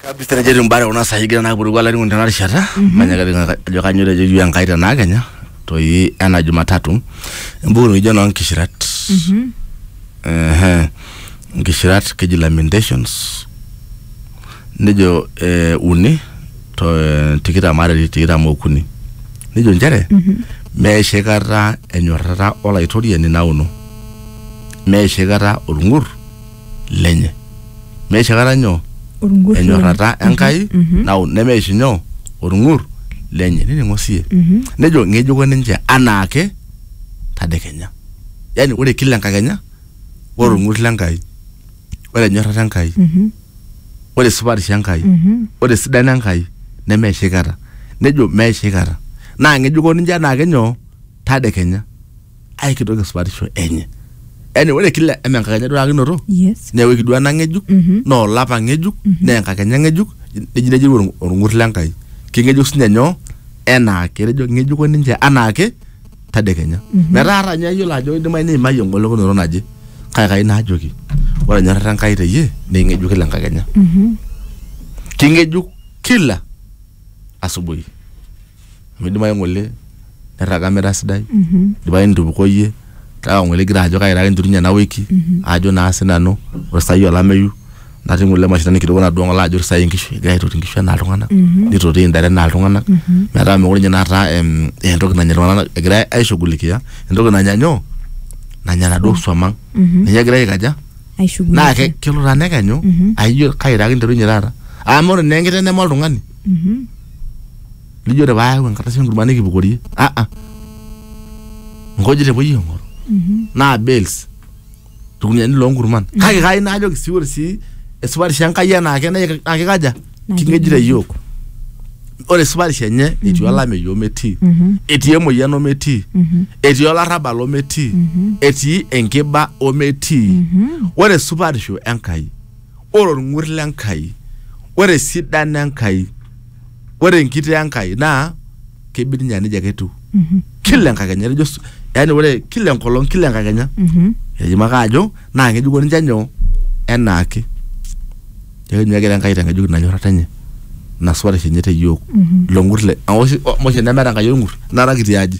kabisa nejo etiu mbare kuna saai egira naa puruku olainining'oni tena rishata manya kapika ajo kanyioo etejo iyiook Enkai tenaa kenya toi ena jumatatu embuku nikijo noo nkishirat ehe nkishirat keji lamentations nejo eh, uni to eh, tikitam are netii tikitam okuni nejo nchere meisho aikata enyorrata olaitoriani nauno meisho aikata olng'ur lenye meisho aikata nyoo Orng'ur lenye. enyorrata enkai Mhm. nau nemeisho nyoo orng'ur lenye nining'o siye Mhm. nejo ng'ejuko ninche anaake tadekenya yaani ore kila enkakenya ore orng'ur lenkai ore enyorrata enkai Mhm. ore supatisho enkai Mhm. ore esidano enkai nemeisho aikata nejo meisho aikata naa ng'ejuko ninche anaake nyoo tadekenya aikitok esupatisho enye yani ore kila eme enkakenya duakinoto yes neeku ekidua ena ng'ejuk Mhm. naa olapa ng'ejuk naa enkakenya ng'ejuk neji neji orng- orng'ur lenkai keng'ejuk sinye nyoo enaake etejo ng'ejuko ninche anaake tadekenya metaa ata ninye ayiolo ajo idimai niimayie engolikinoto naje kake kai naajoki ore enyorrata enkai teyie naa eng'ejuk kila enkakenya Mhm. king'ejuk kila asubuhi Amu idimayu ng'ole nirraga mira sidai, idimayu nitupukoyie kake ng'ole igira ajo kaira ake entutunye ena wiki ajo naa sinanu ore sai olameyu natii ng'ole mashinani kidogo natodua ng'ole ajo ore sai inkishu egira aitoti inkishu enaa iltung'anak, nitoti intare enaa iltung'anak metaa mekure inye naata em entoki nanya iltung'anak egirai aishughulikia entoki nanya nyoo, nanya naduo swam ang'. Ninye egirai aikaja? Naa ke kelo taa nekenyu aa ijo kaira ake entutunye taata. Amu ore naa enkiteng' neme oltung'ani. nijo te paayau enkardasi enkurma nikipukorie ah ah nkujit epuoi aing'oru naa bales irkuniani loonkurman kake kai naajoki sii ore sii esupatisho enkai enaake naa ki- naa kikaja Naa king'ejita king'ejita. iyiook ore esupatisho enye etii olameyu ometii etii emoyian ometii etii olarrabal ometii etii enkiba ometii ore esupatisho enkai ore olng'ur le Nkai, ore esidano e Nkai, ore enkitoo e Nkai naa kebik ninye aa nejia ake etiu. Kila enkakenya etejo Yesu, yaani ore kila enkolong, kila enkakenya. Etejo ake ajo naa ng'ejuko ninche nyoo? Enaake. Neeku ninye egira Enkai aitang'ejuk ina nyorrata enye, ina supatisho enye te iyiook, ilo ng'ur lenye. Amu oshi nemeeta Enkai olng'ur, ina kata kitii aji.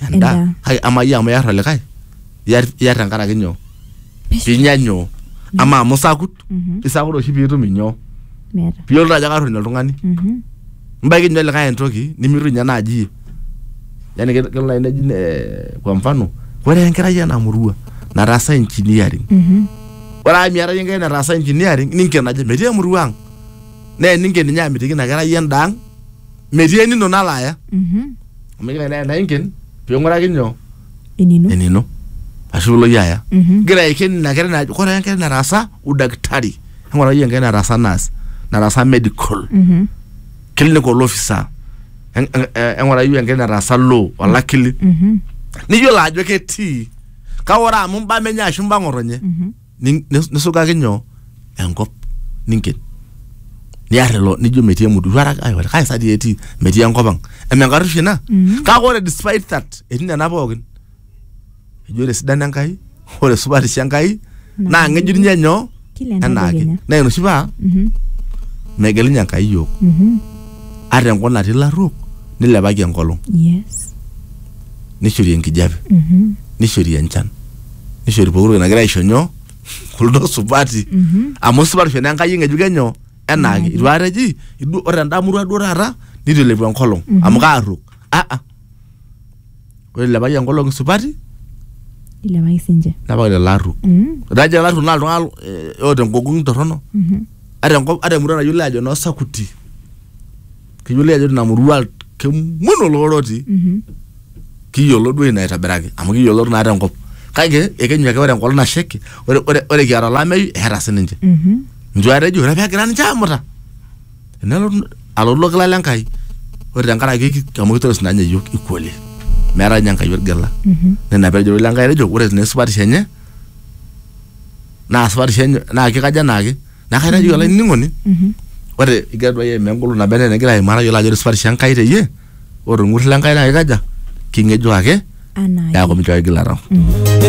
endaa Endaa. Ai, ama iyie amu iyar olikae iyar iyar tenkaraki nyoo pinya nyoo ama amu sakut Mhm. isakut oshi piitum inyoo meeta piyiolou ajo karruny oltung'ani Mhm. mbaiki ninye olikae entoki nimitu ninye naaji iyie yani ke- kelo naaji neji eh, kwa mfano ore enkerai ena murua nataasa engineering Mhm. ore amu miata iyie enkerai nataasa engineering ninken ajo metii emurua ang naa eninken ninye amitiki ina kerai endaa ang metii enino nalo aya Mhm. amu igira ena- ena inken ping'uraki nyoo enino enino ashu ilo iyie aya Mhm. igira aiken ina kerai najo kore enkerai nataasa udaktari eng'ura iyie enkerai nataasa nurse nataasa medical Mhm. clinical officer En- en- eh, eng'ura iyie enkerai nataasa law olakili Mhm. niyiolo ajo ketii kake ore amu imbaa menye ashu imbaa ng'otonye Mhm. nin- nis- nisugaki nyoo enkop ninken niar ilo nijo metii emuduru araka ai wala kai sa dii etii metii enkop ang eme enkarruisho ina Mhm. kake ore despite that etii nena pookin eji ore esidano enkai ore supatisho enkai Naa naa ng'ejuk ninye nyoo Kila enaake enadekenya. naa ina oshi paa Mhm. megelunye enkai yiok Mhm. ata enkop natii ilarruok nilepaki enkolong Yes. nishori enkijape Mhm. nishori enchan nishori pokitoki nagira aisho nyoo kuldo supati amu supatisho naa enkai eng'ejuk enyo enaake itu aikata eji "Idu- ore enda murua duo taata nitu ilepu enkolong amu kaarruok aa ore ilepaki enkolong isupati ilepaki sinche nepaki lelo arruok Mm. ore ajo arruok naa iltung'anak eh, oota enkokong'u torrono Mhm. ata enkop ata emurua nayiolo ajo noo sakuti kiyiolo ajo tina murua kemon oloro otii Mhm. kiyiolo duo ina aitobiraki amu kiyiolo naa tenkop kake ekenyu ake ore enkolong nasheki ore, ore, ore kiata olameyu eeta sininche Mhm. njo atejo ore pegira ninche amuta nelotu alotu ilo kila le Nkai ore tenkaraki ki- amu kitoris naa ninye iyiok equally meetae ninye Enkai orgela Mhm. nena pejo ilo Nkai etejo ore naa esupatisho enye naa supatisho enye naa kikaja enaake Neeku kaitaji mm-hmm. olainining'oni mm-hmm. ore igira duo aimaa engolon naba enaa enegira aimaa tayiolo ajo esupatisho Enkai teyie ore orng'ur le Enkai naa kikaja king'ejuk ake neeku minchoo kigil arau. Mm-hmm.